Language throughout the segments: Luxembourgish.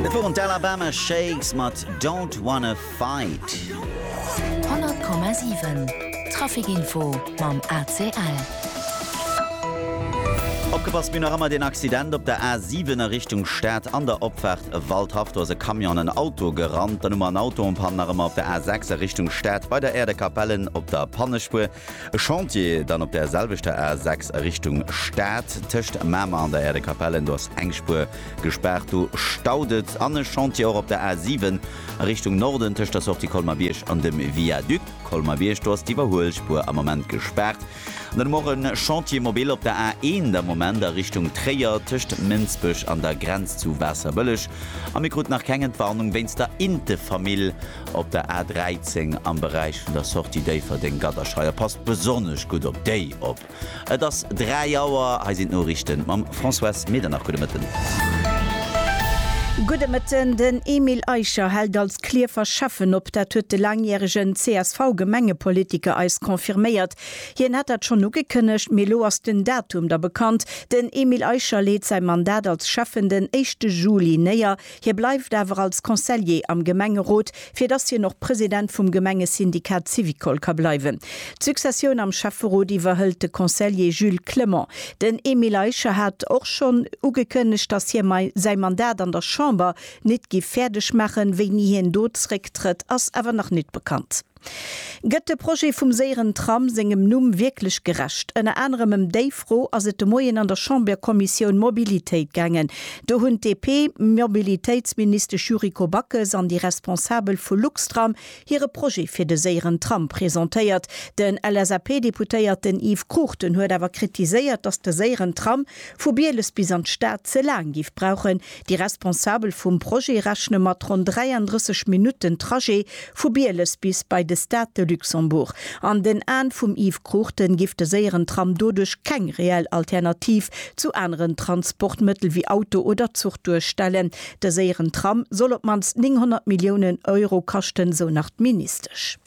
Dat woren d'Alabama Shakes mat Don't Wanna Fight. 100,7 Traficinfo mam ACL. Opgepasst, mir hunn nach ëmmer deen Accident op der A7 a Richtung Stad an der Opfaart Waldhaff. Do ass e Camion an en Auto gerannt. Dann hu mer en Auto en panne nach ëmmer op der A6 a Richtung Stad bei der Aire de Capellen op der Pannespuer. E Chantier dann op där selwechter A6 a Richtung Stad tëscht Mamer an der Aire de Capellen. Do ass eng Spuer Gespaart, do staut et. An e Chantier och op der A 7 a Richtung Norden tëscht der Sortie Colmar-Bierg an dem Viaduc Colmar-Bierg. Do ass d'Iwwerhuelspuer am Moment gespaart. An dann hu mer och e Chantier mobile op der A 1 am Moment a Richtung Tréier tëscht Mënsbech an der Grenz zu Waasserbëlleg. A mir kruten nach keng Entwarnung wéinst der Intefamill op der A 13 am Beräich vun der Sortie Déifferdeng-Gadderscheier. Passt besonnesch gutt op déi op. Et ass 3 Auer, hei sinn d'Noriichten mam Françoise Medernach. Gudde Mëtten. Gudde Mëtten. Den Emile Eicher hält als Klierfer Schäffen op. Dat huet de laangjäregen CSV-Gemengepolitiker eis confirméiert. Hien hat dat schonn ugekënnegt, mee elo ass den Datum da bekannt. Den Emile Eicher leet säi Mandat als Schäffen den éischte Juli néier. Hie bleift awer als Conseiller am Gemengerot, fir datt hien och President vum Gemengesyndikat Syvicol ka bleiwen. D'Successioun am Schäfferot iwwerhëlt de Conseiller Jules Clement. Den Emile Eicher hat och schonn ugekënnegt, datt hie säi Mandat an der Chamber nit giff fäerdeg maachen. Wéini hien do zrécktrëtt, ass awer nach nit bekannt. Gëtt de Projet vum séieren Tram sengem Numm wierklech gerecht? Ënner anerem ëm déi Fro ass et de Moien an der Chamberkommissioun Mobilitéit gaangen. Do hunn d'DP-Mobilitéitsministesch Yuriko Backes an déi Responsabel vu Luxtram hire Projet fir de séieren Tram presentéiert. Den LSAP-Deputéierten Yves Cruchten huet awer kritiséiert, datt de séieren Tram vu Bieles bis an d'Stad ze laang géif brauchen, Déi Responsabel vum Projet rechne mat ronn 33 Minutten Trajet vu Bieles bis bei de Stade de Luxembourg. An den Aen vum Yves Cruchten giff de séieren Tram doduerch keng reell Alternativ zu aneren Transportmëttel wéi Auto oder Zuch duerstellen. De séieren Tram soll op d'mannst 900 Milliounen Euro kaschten, sou nach d'Ministesch.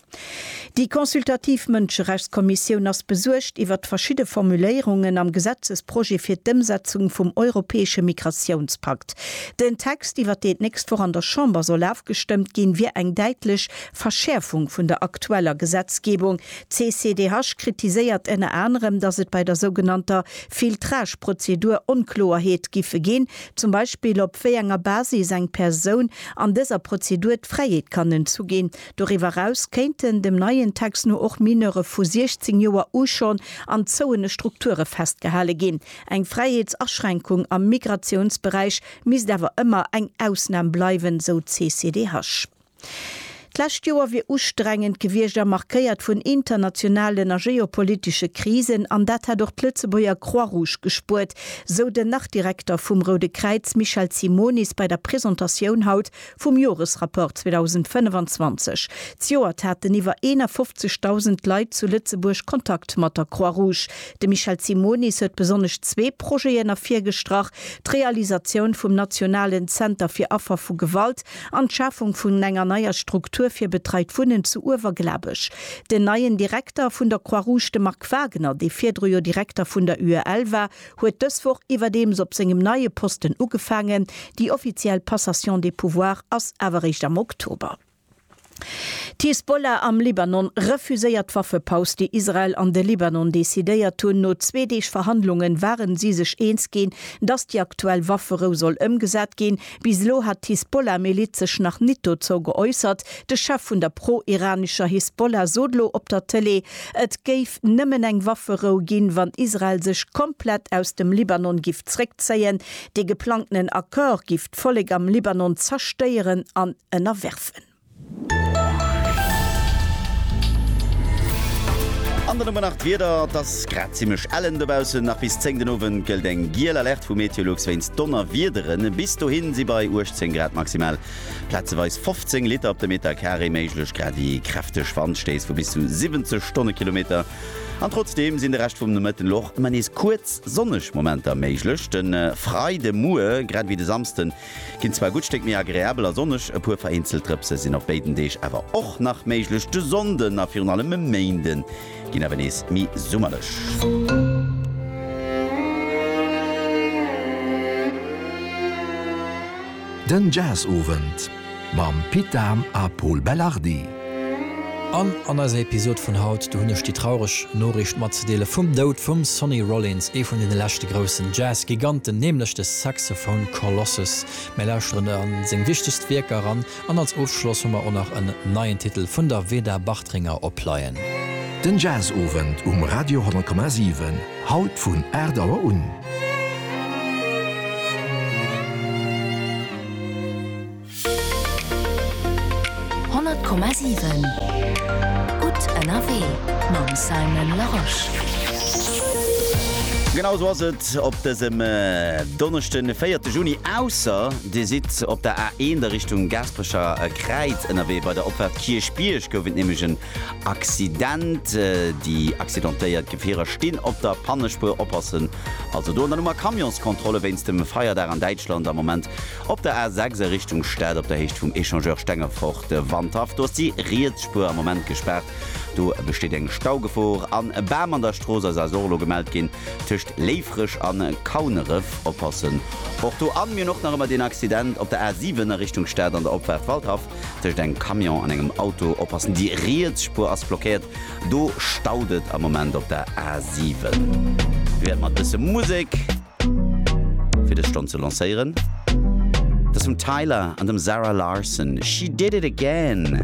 Déi consultativ Mënscherechtskommissioun ass besuergt iwwert verschidde Formuléierungen am Gesetzesprojet fir d'Ëmsetzung vum europäesche Migratiounspakt. Den Text, iwwert deen d'nächst Woch an der Chamber soll afgestëmmt ginn, wier eng däitlech Verschäerfung vun der aktueller Gesetzgebung. D'CCDH kritiséiert ënner anerem, datt et bei der sougenannter Filtrage-Prozedur Onkloerheet giffe ginn, zum Beispill op wéi enger Basis eng Persoun an dëser Prozedur d'Fräiheet kann entzu ginn, Doriwwer eraus kéinten dem neien Text no och Mineure vu 16 Joer u schonn an zouene Strukture festgehale ginn. Eng Fräiheetsaschränkung am Migratiounsberäich misst awer ëmmer eng Ausnam bleiwen, sou d'CCDH. D'lescht Joer wier ustrengend gewiescht a markéiert vun internationalen a geopolitesche Krisen an dat hätt och d'Lëtzebuerger Croix-Rouge gespuert, sou den Nach-Direkter vum Roude Kräiz Michel Simonis bei der Presentatioun haut Vum Joresrapport 2025. Zejoert haten iwwer 51.000 Leit zu Lëtzebuerg Kontakt mat der Croix Rouge. De Michel Simonis huet besonnesch zwee Projeten ervirgestrach, d'Realisatioun vum nationalen Zenter fir Affer vu Gewalt an d'Schafung vun enger neier Struktur fir betreit Wunnen zu Uewerglabech. Den neien Direkter vun der Croix Rouge, de Marc Wagner, dee virdru jo Direkter vun der UEL war, huet dës Woch iwwerdeems op sengem neie Posten ugefaangen. Déi offiziell Passation des pouvoirs ass awer réischt am Oktober. D'Hisbollah am Libanon refuséiert d'Waffepaus, déi Israel an de Libanon decidéiert hunn. No zwee Deeg Verhandlungen ware si sech eens ginn, datt déi aktuell Wafferou soll ëmgesat ginn. Bis elo hat d'Hisbollah-Miliz sech nach nit dozou geäussert. De Chef vun der pro-iranescher Hisbollah sot elo op der Tëlee, et géif nëmmen eng Wafferou ginn, wann Israel sech komplett aus dem Libanon giff zréckzéien. Dee geplangtenen Accord giff d'Vollek am Libanon zerstéieren an ënnerwerfen. An dann hu mer nach d'Wieder, Et ass grad zimmlech ellen dobaussen. Nach bis 10 den Owend gëllt eng giel Alerte vu Meteolux wéinst Donnerwiedere. Bis dohi si bei 18 Grad maximal plazeweis 15 Liter op de Metercarré méiglech, gradi kräfteg Wandstéiss vu bis zu 70 Stonnekilometer. An trotzdeem sinn de Rescht vum Nomëtten elo och ëmmer nees kuerz sonneg Momenter méiglech. De Freidemuer, grad ewéi de Samsden, Ginn zwar e gutt Stéck méi agreabel a sonneg, e puer vereenzelt Drëpse sinn op béiden Deeg awer och nach méiglech. De Sonnden a virun allem e Méinde ginn awer nees méi summerlech. Den Jazz-Owend. Mam Pit Dahm a Pol Belardi. An an eiser Episod vun haut, do hunn ech déi traureg Noriicht matzedeele vum Doud vum Sonny Rollins, ee vun deene leschte groussen Jazz-Giganten, nämlech de Saxophone Colossus. Mir lauschteren a seng wichtegst Wierker eran an als Ofschloss hu mer och nach en neien Titel vun der Veda Bartringer opleien. Den Jazzowend um Radio 10,7, haut vun 8 Auer un. Honnert Komma siwen, gutt ënnerwee mam Simon Larosche. Genau esou ass et op dësem Donneschde, véierte Juni, ausser Dir sidd op der A1 a Richtung Gaasperecher Kräiz ënnerwee. Bei der Opfahrt Kierchbierg gouf et nämlech en Accident. Déi accidentéiert Gefierer stinn op der Pannespuer, oppassen also do. An dann hu mer Camionskontrolle wéinst dem Feierdag an Däitschland am Moment. Op der A 6 a Richtung Stad op der Héicht vum Echangeur Stengefort, Wandhaff, do ass déi riets Spuer am Moment gespaart. Do besteet eng Staugefor an e Bam an der Strooss ass also och elo gemellt ginn tëscht Léifreg an Kauneref. Oppassen och do. An mir hunn och nach ëmmer deen Accident op der A 7 a Richtung Stad an der Opfaart Waldhaff tëscht engem Camion an engem Auto. Oppassen, déi riets Spuer ass blockéiert. Do staut et am Moment op der A 7. Wéi ëmmer e bësse Musek. fir dës Stonn ze lancéieren. Dat ass vum Tyler an dem Zara Larsson, She Did It Again.